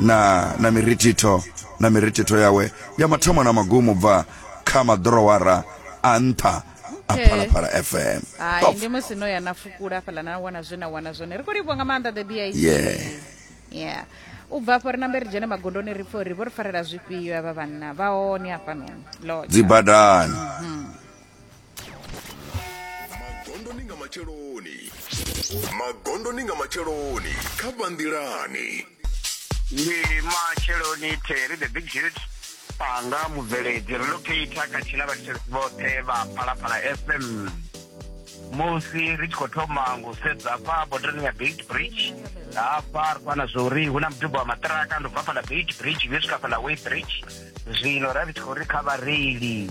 na na mirithitho na mirithitho yawe ya mathomo na magumo bva kha maḓorowara a nṱha a Okay. phalaphala fm hai Top. ndi musi no ya na fukula fhaḽa na wana zwe na wana zwone ri khou livhuwa nga maanḓa the bic Yeah. yeah u bva afho ri nambe ri dzhene magondoni ri pfhe uri vho ri farela zwifhio avha vhanna vha hone hafhanoni Lord. dzibadani magondoni nga matsheloni magondoni nga matsheloni kha vhanḓilani ndi matsheloni terry the big hit panga mubveledzi relocator khathihi na vhathetshelesi vhoṱhe vha phalaphala fm musi ri tshi khou thoma ngo sedza hafha bodarani ya beit bridge hafha ri fana zwa uri hu na muduba wa maṱiraka ndo bva fhala beit bridge yo swika fhala way bridge zwino ra ri tshi khou ri kha vhareili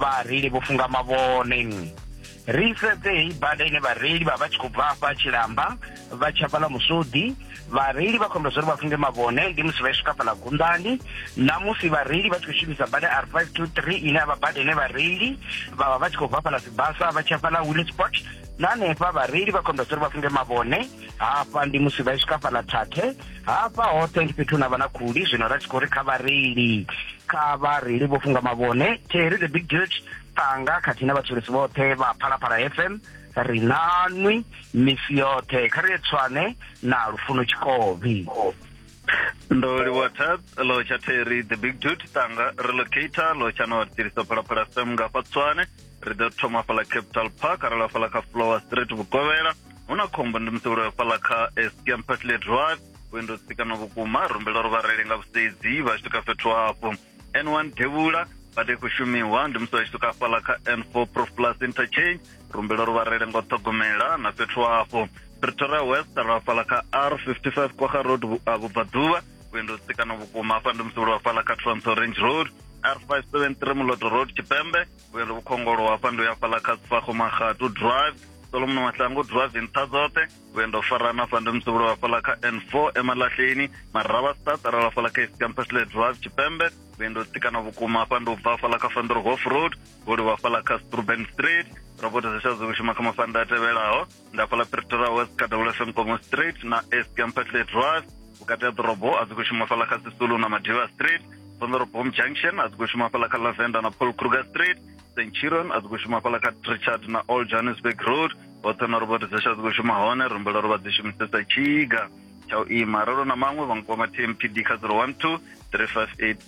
vhareili vho funga mavhone ri sedze heyi bada ine vhareili vha vha tshi khou bva afha tshilamba vha tshi hafhaḽa musodi vhareili vha khombela zwauri vha funge mavhone ndi musi vha i swika fhaḽa gundani na musi vhareili vha tshi khou shumisa bada r five two three ine a vha bada ine vhareili vha vha vha tshi khou bva fhaḽa sibasa vha tshi hafhaḽa willisport na hanefha vhareili vha khombela zwauri vha funge mavhone hafha ndi musi vha i swika fhaḽa thathe hafha hoṱhe ndi fhethu na vha na khuli zwino ra tshi khou ri kha vhareili kha vhareili vho funga mavhone terry the big judge ṱanga khathihi na vhatshilisi vhoṱhe vha phalaphala fm ri nanwi misi yoṱhe kha ri tswane na lufuno tshikovhi ndo livhuwa tat lo tsha terry the big dude ṱanga relocator lo tsha no tiriso phalaphala fm nga fa tswane ri ḓo thoma fhala capital park ra lafhala kha flower street vhukovhela hu na khombo ndi musi uloyo fhaḽa kha escam patley drive vhuendo tsikana vhukuma a rumbela uri vhareili nga vhusedzi vha swika fhethu hafho n one devhula bada i khou shumiwa ndi musi vha tshi swika fhaḽa kha n four prof plus interchange rumbela uri vhareili nga u ṱhogomela na fhethu hafho pretoria west ra fhaḽa kha r 55 kwaga road vhubvaḓuvha vhuendo tsikana vhukuma afha ndi musi uloyo fhaḽa kha trans orange road r 573 muloto road tshipembe vhuyelo vhukhongolo hafha ndo ya fhaḽa kha sifagomagatu drive solomon mahlangu drive nṱha dzoṱhe vhuendo farana hafha ndi musevhulo wa fhaḽa kha n four emalahleni marava start arala fhaḽa kha east campusle drive tshipembe vhuendo tikana vhukuma hafha ndi u bva fhaḽa kha fandorhof road vholi wa fhaḽa kha struben street roboto zesha zwi shuma kha mafanda a tevhelaho nda fhala pretoria west kha double fm komo street na east campertley drive vhukati ha ḓorobo a dzi khou shuma fhala kha sisulu na madiva street sonderobom junction a dzi khou shuma fhala kha lavenda na paul kruger street st chiron a dzi khou shuma fhala kha trichard na all johannesburg road hoṱhe na robot dzasha dzi khou shuma hone rumbela ro vha dzi shumisesa tshiga tsha u ima ralo na maṅwe vha nkwama tmpd kha 012 358